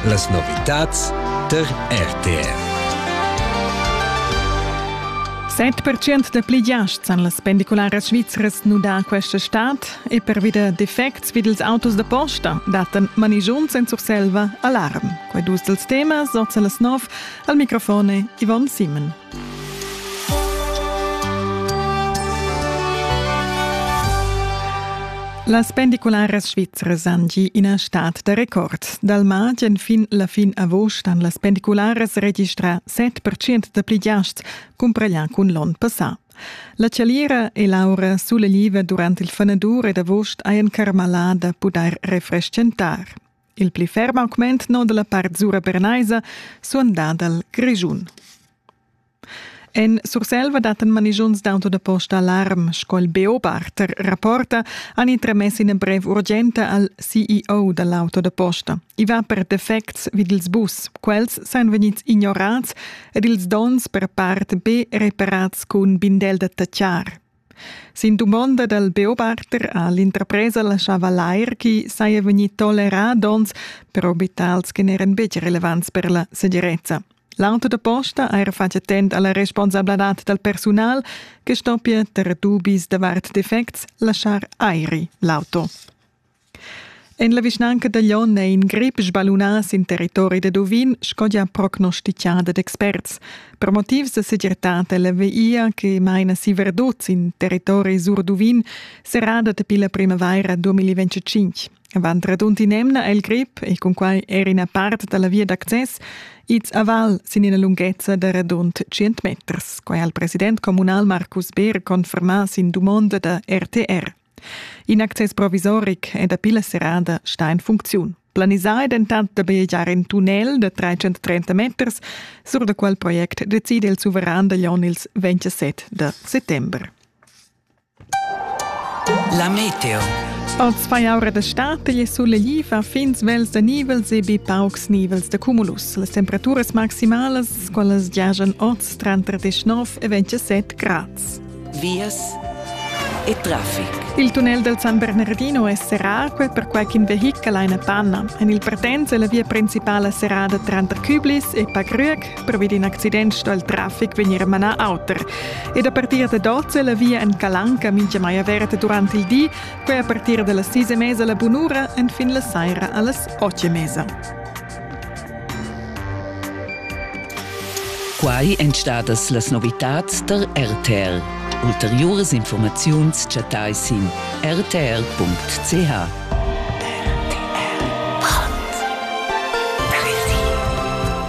Las novitads tar RTR. 7% da pli giasts han las pendicularas svizras nudà questa stad e pervi da defects vid ils autos da posta dattan manigiuns en Surselva alarm. Quai dus dals temas, oz a las 9, al microfon Yvonne Simon. Las pendicularas svizras han gì ina stad da record. Dal martg fin la fin agost han las pendicularas registrà 7% da pli giasts cumpraglià cun l'onn passà. La chaliera e l'aura sulegliva durant il fanadur ed agost hajan carmalà da pudair refreschentar. Il pli ferm augment no dalla part sura bernaisa suonda dal Grischun. En Surselva datten manigiuns d'auto da posta alarm, sco il Beobarter rapporta, han intremess ina brev urgenta al CEO dall'auto da posta. I va per defects vid ils bus. Quels san vegnids ignorats ed ils donns per part be reparats cun bindel da tachar. Sin dumonda dal Beobachter ha l'interpresa laschava lair ch'i saja vegnì tolerà donns per abitants che n'eran betg relevants per la segirezza. L'auto da posta ha era fatg attent a la responsabladad dal persunal che stoppia, tar dubis davart defects, laschar airi l'auto. En la vischnanca da Glion è in grip sballunà sin territori da Duvin, sco gia prognostichada d'experts. Per motivs da segirtad è la via che maina si Verdot sin territori sur Duvin serrada dapi la primavaira 2025. Avant radund in'emna è il grip, e cunquai era ina part da la via d'access, ids aval sin ina lunghezza da radund 100 meters. Quai ha il president communal Marcus Beer confermà sin dumonda da RTR. In access provisoric è dapi la serrada stà en funcziun. Planisà è dentant da biagiar in tunnel da 330 meters, sur da quel project decide il suveran da Jon ils 27 da settembre. La meteo. Oz fai aura d'estate e sulegli fa fin svels da nivels e be paucs nivels da cumulus. Las temperaturas maximalas, quelles giajan oz tranter 19 e 27 grads. vias e traffic. Il tunnel dal San Bernardino è serrà, quel perquai ch'in vehichel ha ina panna. En il partenza è la via principala serrada tranter Küblis e Pagrüeg, provi d'in accident sto il traffic vegnir manà auter. Ed a partir da 12 è la via en Calanca mintgamai averta durant il di, quai a partir da las 6 e mesa la bunura, enfin la saira a las 8 e mesa. Quai èn stadas las novitads tar RTL. Ulteriuras informaziuns chattai sin rtr.ch.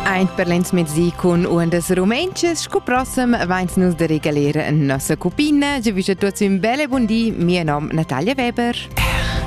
Eint per l'ensmezdi cun uondas rumentschas sco prossem vains nus da regaler nossa cupina. Giavüsch a tuots ün bel e bun di. Mia nom Natalia Weber.